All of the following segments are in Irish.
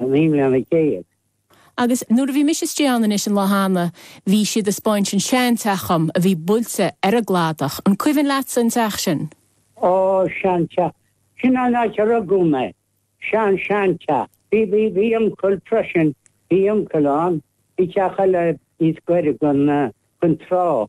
Naoi mbliana déag. Agus nuair a bhí mise istigh ann anois an lá cheana, bhí siad ag 'speáint an sean-teach dhom a bhí buailte ar an gcladach. An cuimhin leatsa an teach sin? Ó, sean-teach. Sin an áit a rugadh mé. Sean-seanteach. Bhí, bhí, bhí uncail freisin, bhí uncail ann i dteach eile níos gaire gon, gon trá.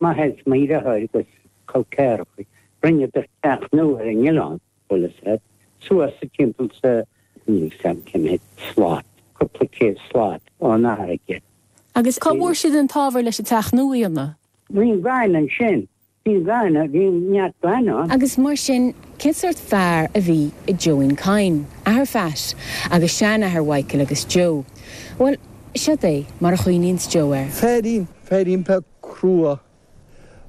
Maidir leis an mír a chur agus Coill Chairn, rinneadh do chreathnú ar an oileán, Buillis et. suas sa timpeall sa, níl fhios cén mhéid, slat, cúpla céad slat ón fharraige. Agus cá bhfuair siad an t-ábhar leis an teach nua a dhéanamh? Bhíodh, gan ansin. Bhínn glan a, bhínn neart glan ann. Agus mar sin, cén sórt fear a bhí i John Coyne, athair Phat, agus seanathair Mhichael agus Joe? Bhuel, séard é, mar a chuimhníonns Joe air. Féirín, féirín Phat. crua.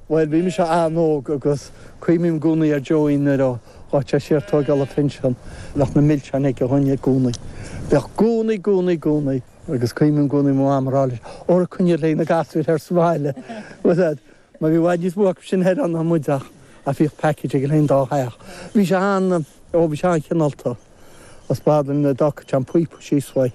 Bhuel, bhí mise an-óg agus cuimhním i gcónaí ar Joey nuair a ghabhadh sé siar ag tóigeáil an phinsin. Bheadh na milseáin aige dhúinn i gcónaí. Bheadh i gcónaí, i gcónaí, i gcónaí agus cuimhním i gcónaí mo Mham ag rá leis, Óra coinnigh le haghaidh na gasúir thoir sa bhaile. Bhuel, ar ndóigh, mar bhí i bhfad níos mó acu sin thoir ann ná muid ach, ach bhíodh package againn féin i dtólamh. Bhí sé an, ó bhí sé an-chineálta. Is fada an dá cuid an píopa síos uaidh.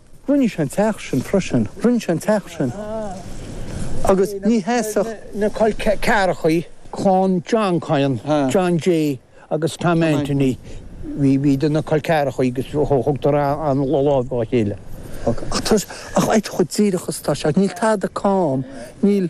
Rinne sé an teach sin freisin. Rinne sé an teach sin agus ní sheasfadh. na col ceathrachaí, clann John Coyne, John J. agus Tom Anthony, bhíodar ina gcol ceathrachaí agus thugadar an lámh dá chéile. Ach tá sé, ach áit chomh díreach is atá sé, níl tada cam, níl.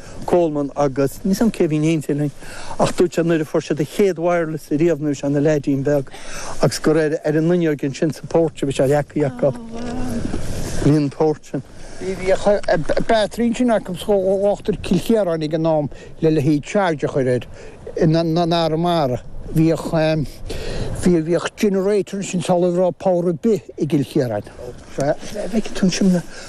Coleman agus níl a fhios agam cé a bhí in éindí linn ach dúirt sé nuair a fuair siad an chéad wireless riamh nuair a bhí sé ina leaidín beag agus gur ar ar an fhuinneoig ansin sa porch a bhí sé leagtha acu. Bhí an porch sin. Bhíodh battery ansin acu thíos i gCill Chiaráin ag an am le le haghaidh charge a chur air in in Arramara. Bhíodh bhí bhíodh generator ansin sula raibh power ar bith i gCill Chiaráin. Sea, feicfidh tú ansin na.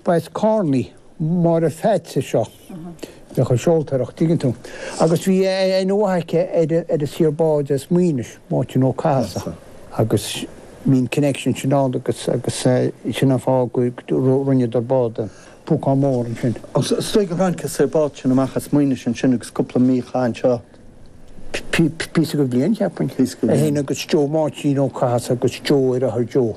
Bhí Babs Carney, Máire Pheats a seo. Bhí sé ag seoltóireacht, dtuigeann tú. Agus bhí aithne mhaith aige ar an saor bád as Maínis, Máirtín Ó Cathasaigh. Agus bhí an connection sin ann agus sin an fáth go rinneadar bád, an púcán mór ansin. Is dóigh gur tháinig an saor bád sin amach as Maínis ansin agus chaith sé cúpla mí anseo. Píosa dhe bhliain, cheapfainn. Píosa dhe bhliain. Agus Joe Máirtín Ó Cathasaigh agus Joe, athair Joe.